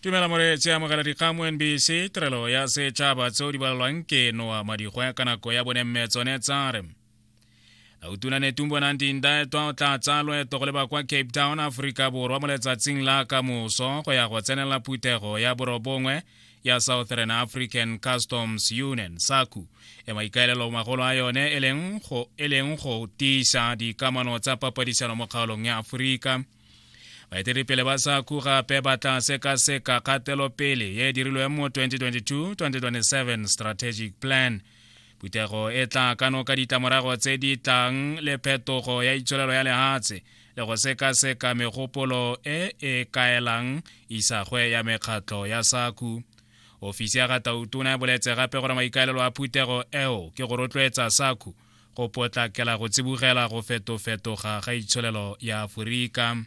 tumela moreetsi a mogela dikgang mo nbc tirelo ya setšhaba tseo di balelwang ke noa madigwe ka nako ya bone mme tsone tsa re autuna netumbo nang dindaetwa o tla tsaya loeto go leba kwa cape town aforika borwa mo letsatsing la ka moso go ya go tsenela phuthego ya borobongwe ya southern african customs union saku e maikaelelo magolo a yone e leng go tiisa dikamano tsa papadisano mo kgaolong ya aforika baeteledipele ba sa ku gape ba tla sekaseka kgatelopele ye e dirilweng mo 2022-2027 strategic plan phuthego e tla ka noka ditlamorago tse di tlang le phetogo ya itsholelo ya lehatshe le go sekaseka megopolo e e kaelang isagwe ya mekgatlo ya saku ofisi ya gatautuna e boletse gape gore maikaelelo a phuthego eo ke go rotloetsa saku go potlakela go tsibogela go fetofetoga ga itsholelo ya aforika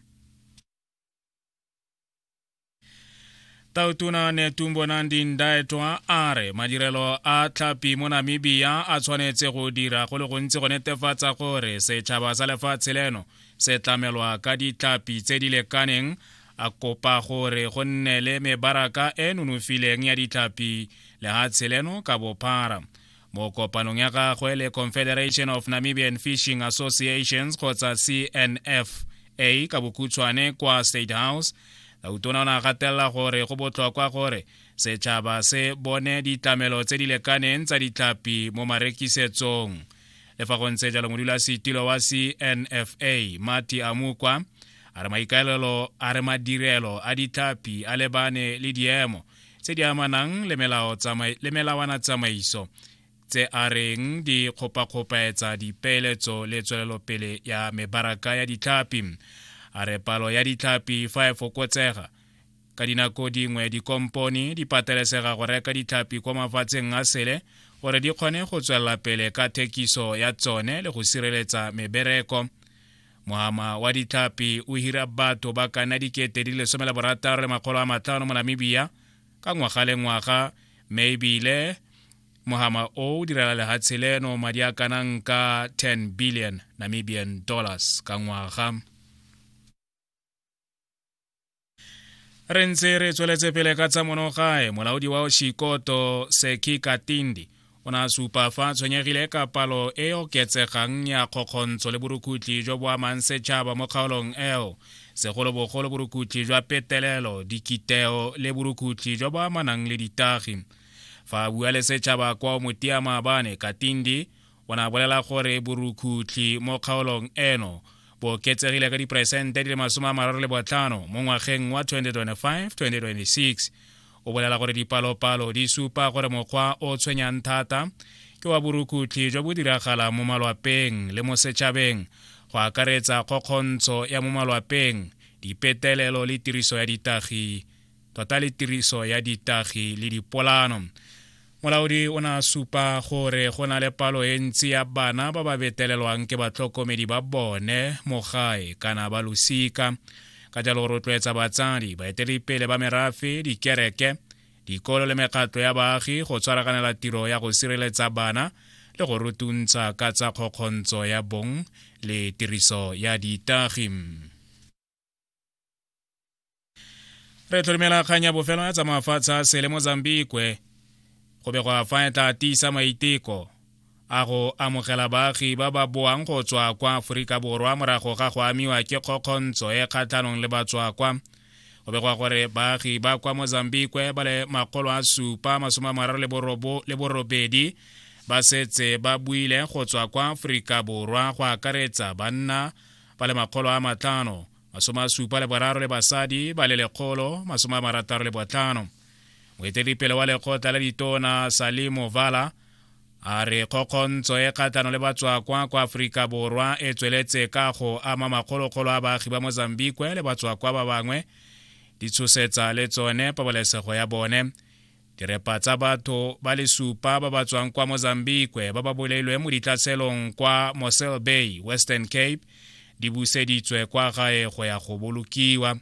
tautona netumbo nandi ndaetwa a re madirelo a tlhapi mo namibia a tshwanetse go dira go le gontsi go netefatsa gore setšhaba sa lefatshe leno se tlamelwa ka ditlhapi tse di lekaneng a kopa gore go nne le mebaraka e nonofileng ya ditlhapi lehatshe leno ka bophara mo kopanong ya gagwe le confederation of namibian fishing associations kgotsa cnfa ka bokhutshwane kwa state house lautona o ne a gatelela gore go botlhokwa gore setšhaba se bone ditlamelo tse di lekaneng tsa ditlhapi mo marekisetsong le fa go ntse jalo modulasetilo wa cnfa mati amukwa a re maikaelelo a re madirelo a ditlhapi a lebane le diemo tse di amanang le melao tsamai le melawana tsamaiso tse a reng di kgopakgopaetsa dipeeletso le tswelelopele ya mebaraka ya ditlhapi a re palo ya ditlhapi fa e fokotsega ka dinako dingwe dikompone di patelesega go reka ditlhapi kwa mafatsheng a sele gore di kgone go tswelela pele ka thekiso ya tsone le go sireletsa mebereko mohama wa ditlhapi o hira batho ba ka nna dikete di le somela borataro le makgolo a matlhano mo namibia ka ngwaga le ngwaga mme ebile mohama o o direla lehatshe leno madi a kanang ka 10 billion namibian dollars ka ngwaga re ntse re tsweletse pele ka tsa monogae molaodi wa shikoto seki katindi o ne a supa fa a tshwenyegile ka palo e oketsegang ya kgokgontsho le borukutlhi jo bo amang setšhaba mo kgaolong eo segolobogolo borukutlhi jwa petelelo dikiteo le borukutlhi jo bo amanang le ditagi fa a bua le setšhaba kwa o motia maabane katindi O ne a bolela gore borukhutlhi mo kgaolong eno bo oketsegile ka diperesente di le masome a mararo le botlhano mo ngwageng wa 2025-2026 o bolela gore dipalopalo di supa gore mokgwa o tshwenyang thata ke wa borukhutlhi jo bo diragalang mo malwapeng le mo setšhabeng go akaretsa kgokgontsho ya mo malwapeng dipetelelo le tiriso ya ditagi tota le tiriso ya ditagi le dipolano molaodi o ne a supa gore go na le palo e ntsi ya bana ba ba betelelwang ke batlhokomedi ba bone mo gae kana ba losika ka jalo rotloetsa batsadi baeteledipele ba merafe dikereke dikolo le mekgatlo ya baagi go tshwaraganela tiro ya go sireletsa bana le go rutuntsha ka tsa kgokgontsho ya bong le tiriso ya ditagi re tlhorimela kgang ya bofelo ya tsamaafatshe a sele mozambikwe go be go a fa e tla tiisa maiteko a go amogela baagi ba ba boang go tswa kwa aforika borwa morago ga go amiwa ke kgokgontsho e kgatlhanong le batswakwa go begwa gore baagi ba kwa mozambikwe ba le makgolo a supa masome a mararo le borobedi ba setse ba buile go tswa kwa aforika borwa go akaretsa banna ba le makgolo a matlhano masome a supa le boraro le basadi ba le lekgolo masome a marataro le botlhano moeteledipele wa lekgotla la ditona salimo vala a re kgokgontsho e kgatlhano le batswakwa kwa aforika borwa e tsweletse ka go ama makgolokgolo a baagi ba mozambique le batswakwa ba bangwe di tshosetsa le tsone pabalesego ya bone Direpa tsa batho ba le supa ba ba tswang kwa Mozambique ba ba bolailweng mo ditlhaselong kwa Mossel Bay, Western Cape, di buseditswe kwa gae go ya go bolokiwa.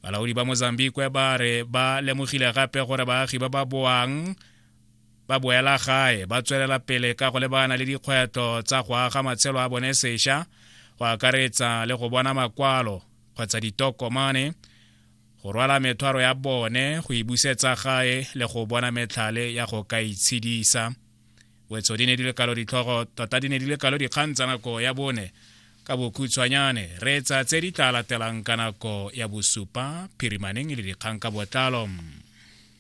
Balaodi ba Mozambique ba re ba lemogile gape gore baagi ba ba boang ba boela gae ba tswelela pele ka go lebana le dikgwetlho tsa go aga matshelo a bone sesha go akaretsa le go bona makwalo kgotsa ditokomane go rwala methwaro ya bone go e busetsa gae le go bona metlhale ya go ka itshedisa wetso di ne di le kalo ditlhogo tota di ne di le kalo dikgang tsa nako ya bone ka bokhutshwanyane reetsa tse di tla latelang ka nako ya bosupa phirimaneng le dikgang ka botlalo